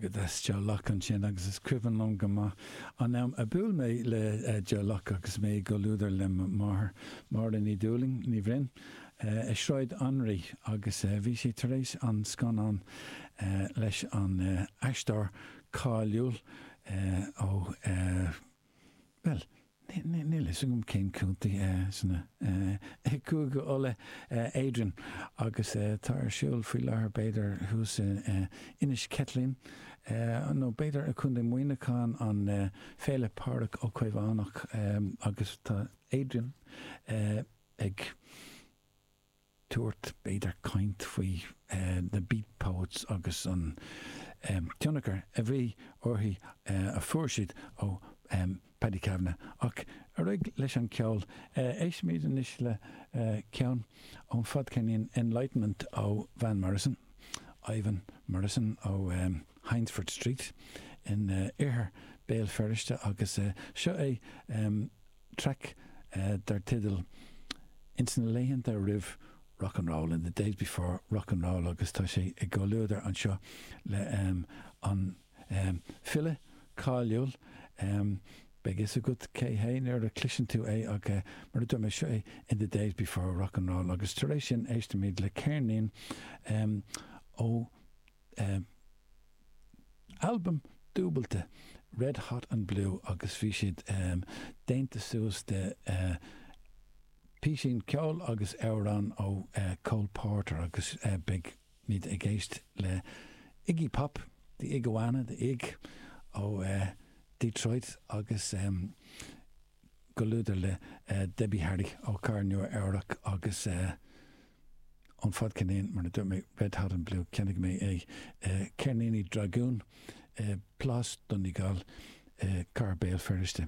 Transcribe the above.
agat as Joe Locke ansin agus is cuimhin liom go maith an am a bhuail mé le Joe Locke agus mé i gcomhluadar le mo mháthair, Máire Ní Dhúlaing, Ní Bhroin, i Sráid Anraí agus bhí sé tar éis an scannán leis an aisteoir cáiliúil ó. Bhuel, níl a fhios agam cén contae sna Cúige Uladh, Adrian, agus tá ar siúl faoi láthair b'fhéidir thuas in Inis Ceithlín nó b'fhéidir i gContae Mhuineacháin, an Féile Pádraig Ó Caomhánach agus tá Adrian ag. tabhairt, b'fhéidir caint faoi na Beat Poets agus an tionchar a bhí orthu a fuair siad ó Paddy Kavanagh. Ach ar aghaidh leis an cheol. Éistfimid anois le ceann ón fadcheirnín Enlightenment ó Van Morrison, Ivan Morrison ó Hyndford Street in oirthear Béal Feirste agus seo é traic dar teideal 'Ins na laethanta roimh Rock and Roll, In the days before Rock and Roll' agus tá sé i gcomhluadar anseo le an file cáiliúil Beidh fhios agat cé hé nuair a chloiseann tú é ach mar a dúirt mé, seo é 'In the days before Rock and Roll' agus tar éis sin éistimid le ceirnín ó albam dúbailte, Red Hot and Blue, agus bhí siad déanta suas de písín ceoil agus amhráin ó Cole Porter agus beimid ag éist le Iggy Pop, The Iguana, The Ig, ó Detroit agus i gcomhluadar le Debbie Harry ó Cathair Nua-Eabhrac agus. ón fadcheirnín mar a dúirt mé red hot and blue cheannaigh mé é ceirníní dragún, plás Donegal, cathair Béal Feirste.